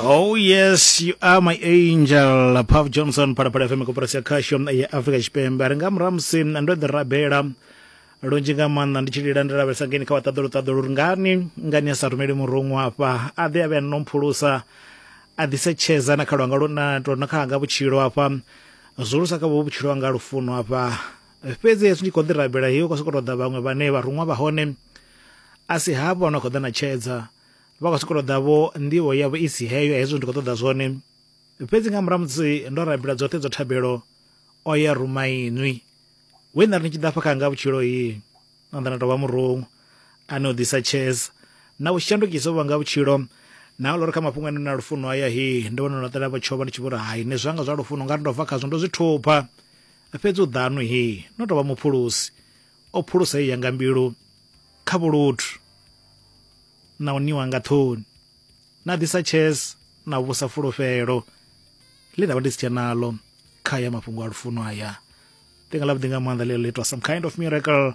Oh yes, you are my angel. Puff Johnson parapara FM kuparasya khasho ya Africa Chipembe. Ari nga murahu musi ndo ḓi rabela lunzhi nga maanḓa ndi tshi lila ndi lavhelesa ngeni kha vhaṱaḓulu ṱaḓulu uri ngani ngani a sa rumeli murungu afha a ḓe a vhe no mphulusa a ḓise tshedza na kha lwanga lu na to na kha hanga vhutshilo afha zwulusa kha vho vhutshilo hanga lufuno afha fhedzi hezwi ndi khou ḓi rabela hiyo khou sokou tou ḓa vhaṅwe vhane vharuṅwa vha hone a si havho no khou ḓa na tshedza vha khou sokou ṱoḓa vho nḓivho yavho i si heyo hezwo ndi khou ṱoḓa zwone fhedzi nga murahu musi ndo rabela dzoṱhe dzo thabelo o ya rumainwi we nda ri ni tshi ḓa fha kha nga vhutshilo yi na nda na tovha murungu ane u ḓisa chess na u shandukisa vha nga vhutshilo na lori kha mafhungo ane na lufuno haya hi ndi vhona na ṱela vhatshova ndi tshi vhori hai ne zwanga zwa lufuno nga ri ndo bva khazwo ndo zwi thupha fhedzi u ḓanu hi no tovha muphulusi o phulusa ya nga mbilu kha vhuluthu na u niwa nga ṱhoni na ḓisa chess na vhusa fulufhelo ḽi ndavha ndi si tshe nalo kha ya mafhungo a lufuno aya ḽinga ḽavhuḓi nga maanḓa ḽeḽo ḽitwa some kind of miracle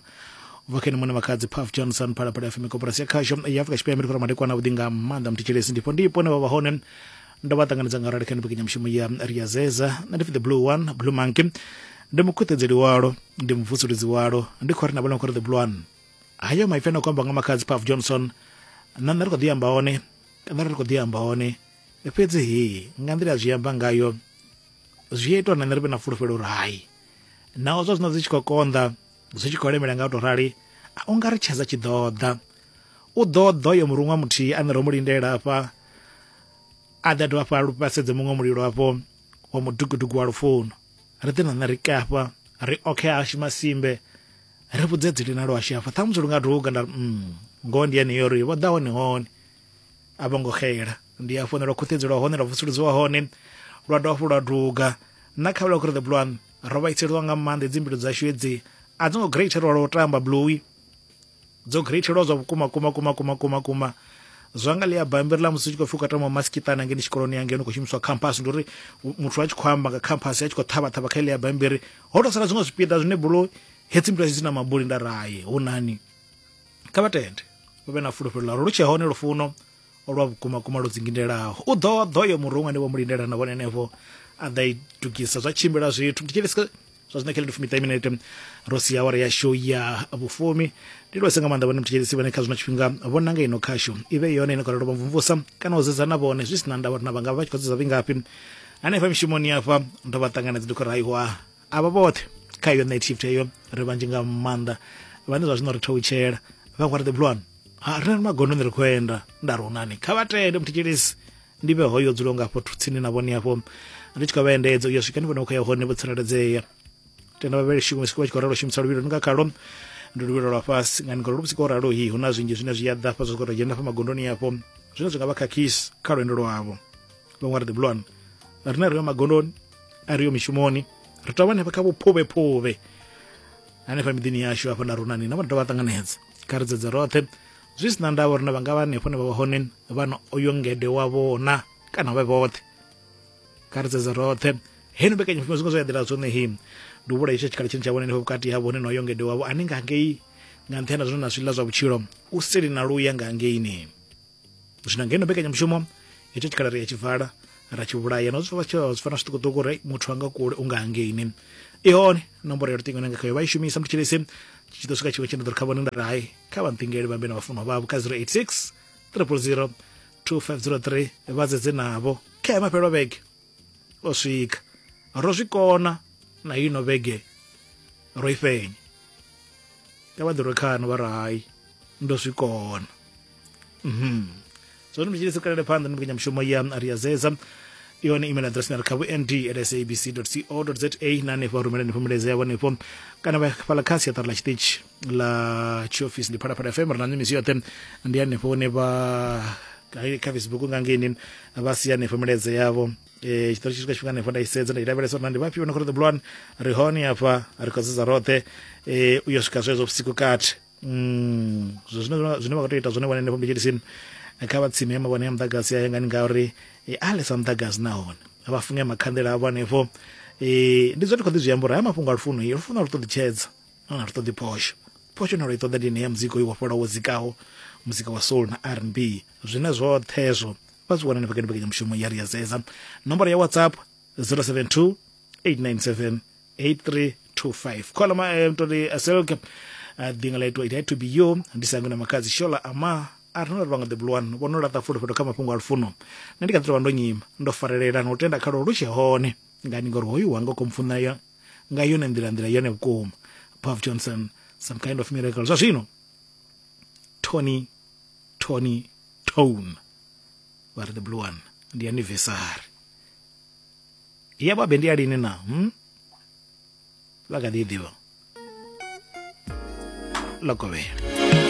vhakene mune makhadzi paf johnson phalaphala fm koporasi ya khasho ya afrika tshipembe ndi khou ramadekwana vhuḓi nga maanḓa muthethelesi ndifho ndi ipone vha vha hone ndo vha ṱanganedza nga rali kha mbekanyamushumo ya riyazeza nṋe ndi pfi the blue one blue monkey ndi mukhuṱedzeli walo ndi muvusuludzi walo ndi khou ri na vhona khou ri the blue one hayo maipfi ane khou amba nga makhadzi paf johnson na nṋe ri khou ḓi amba hone kana ri khou ḓi amba hone fhedzi hi nga nḓila ya zwi amba ngayo zwi a itiwa na nṋe ri vhe na fulufhelo uri hai naho zwa zwino zwi tshi khou konḓa zwi tshi khou lemela nga u tou rali a u nga ri tshedza tshi ḓoḓa u ḓoḓa yo muruṅwa muthihi ane ro mu lindela afha a ḓa dovha fha lu vhasedze muṅwe mulilo hafho wa mudukuduku wa lufuno ri ḓi na nṋe ri kafha ri okhe hashu masimbe ri vhudze dzili na lwashu hafha ṱhamusi lu nga duga nda mm, ngoho ndi yeneyo ri vho ḓa hone hone a vho ngo xela ndi a founela khuṱhedzo lwa hone lwa vusuludziwa hone lwa dovha fho lwa duga na kha vhula kuri the blue one ro vhaiseliwa nga maanḓa dzi mbilu dzashu hedzi a dzi ngo greater lwa lwa u tamba blue dzo greatelwa zwa vhukuma kuma kuma kuma kuma kuma zwa nga ḽia bammbiri ḽa musi u tshi khou pfhi u khou tama masikitana ngeni tshikoloni yangei ni khou shumiswa khamphasi ndi uri muthu a tshi khou amba nga khamphasi a tshi khou ṱhavhaṱhavha kha ḽia bammbiri ho tou sala zwiṅwe zwipiḓa zwine bulo hedzi mbilu dzi na mabuli nda raye hu nani kha vha tende vha vhe na fulufhelo ḽa uri lu tshe hone lufuno lwa vhukuma kuma lwo dzingindelaho u ḓo ḓo yo murunga ni vho mu lindela na vhone henefho a ḓa i dugisa zwa tshimbila zwithu ndi tshilisa zwa zwino khelele fumi minete ro si awara ya show ya vhufumi ndi lwese nga maanḓa vhone muthetshedzisi vhane kha zwino tshifhinga vho nanga ino khasho i vhe yone ine khou lelo vhamvumvusa kana u zedza na vhone zwi si na ndavha uri na vhanga vha tshi khou zedza vhingafhi hanefha mishumoni afha ndo vha ṱanganedza ndi khou raiwa avha vhoṱhe kha iyo night shift eyo ri vhanzhi nga maanḓa vhane zwa zwino ri thoutshela vha khou ri the blue one ha ri na magondoni ri khou enda nda ri unani kha vha tende muthetshelesi ndi vhe hoyo dzulo nga afho tsini na vhone afho ri tshi khou vha endedza uyo swika ni vhone khou ya hone vho tsireledzea tenda vha vhele shume siku vha tshi khou ralo shumisa luvhilo nga khalo ndi luvhilo lwa fhasi nga ni ngalo vhusiku ralo hi hu na zwinzhi zwine zwi ya ḓa fha zwi khou dzhena fha magondoni afho zwine zwi nga vha khakhisi kha lwendo lwavho vhaṅwe ri the blue one rine ri yo magondoni a ri yo mishumoni ri tou hanefha kha vhuphuvhephuvhe hanefha miḓini yashu hafha na runani na vha dovha ṱanganedza kha ri dzedze roṱhe zwi si na ndavha uri na vha nga vha hanefho ne vha vha hone vhana oyo ngede wavho na kana vhe vhoṱhe kha ri dzedze roṱhe heno mbekanyamushumo zwingo zwo ya ḓela zwone him ndi u vhula itsho tshikhala tshine tsha vhona henefho vhukati havho hone na oyo ngede wavho ane nga ngei nga nṱhani na zwine na zwiḽa zwa vhutshilo u seli na luya nga ngeini zwino ngeno mbekanyamushumo itsho tshikhala ri ya tshibvala ra tshi vhulaya na zwi fana zwiṱukuṱuku ri muthu anga kule u nga hangeini i hone nomboro ya luṱingo nanga khayo vha i shumisa muthu tshilisi tshi ḓo swika tshiṅwe tshine ḓo ri kha vhone nda ri hai kha vha nṱingele vhambe na vhafunwa vhavho kha 086 000 2503 vha dzedze navho kha ya mafhelwa vhege o swika ro zwi kona na ino vhege ro i fenya ka vha ḓirwe khano vha ri hai ndo zwi kona zoni mutshili si kalele phanḓa ndi mbekanyamushumo ya ri ya zeza yone email address na ri kha vhuend at sabc co za na hanefho rumelani fhumeledzo yavho hanefho kana vha fhala kha siaṱari ḽa tshiṱitshi ḽa tshiofisi ndi phalaphala fm ri na mimisi yoṱhe ndi hanefho hune vha hai kha facebook nga ngeni vha si hanefho milaedza yavho eh tshitori tshi swika tshifhinga hanefho nda i sedza nda i lavhelesa uri na ndi vhafhio na khou ṱoḓa bulwani ri hone hafha ri khou sedza roṱhe eh u yo swika zwezwo vhusiku kati Mm, zwe zwine vha- zwine vha khou tea u ita zwone vhone henefho mbetshelisini kha vha tsime mavhone ya muḓagasi ayo ngani ngauri eh, a lesa muḓagasi nahone vha funge makhanḓela avho hanefho um ndi zwe ndi khou ḓi zwi amba uri haya mafhungo a lufuno i lufuno a lu ṱoḓi tshedza nahone a lu ṱoḓi phosho phosho ine lwa i ṱoḓa ndi ine ya muzika uyu wa fhola wo dzikaho muzika wa soul na r n b zwine zwoṱhe hezwo vha zwi wana henefho kha mbekanyamushumo ya ri ya zeza nomboro ya whatsapp 072 897 8325 khola ma eh, mtoti aselke uh, ḓinga ḽa itwa it had to be you ndi sangu na makadzi shola ama a ri no ri vhanga the blue one vhono laṱa fulufhelo kha mafhungo a lufuno nṋe ndi kha ḓi tovha ndo nyima ndo farelela na u tenda khalo lu tshe hone ngani ngori hoyu wanga u khou mpfuna yo nga yone nḓila nḓila yone vhukuma pav johnson some kind of miracle zwa zwino tony tony tone vha ri the blue one ndi anniversary ya babe ndi ya lini na hmm? vha kha ḓi i ḓivha lokovhela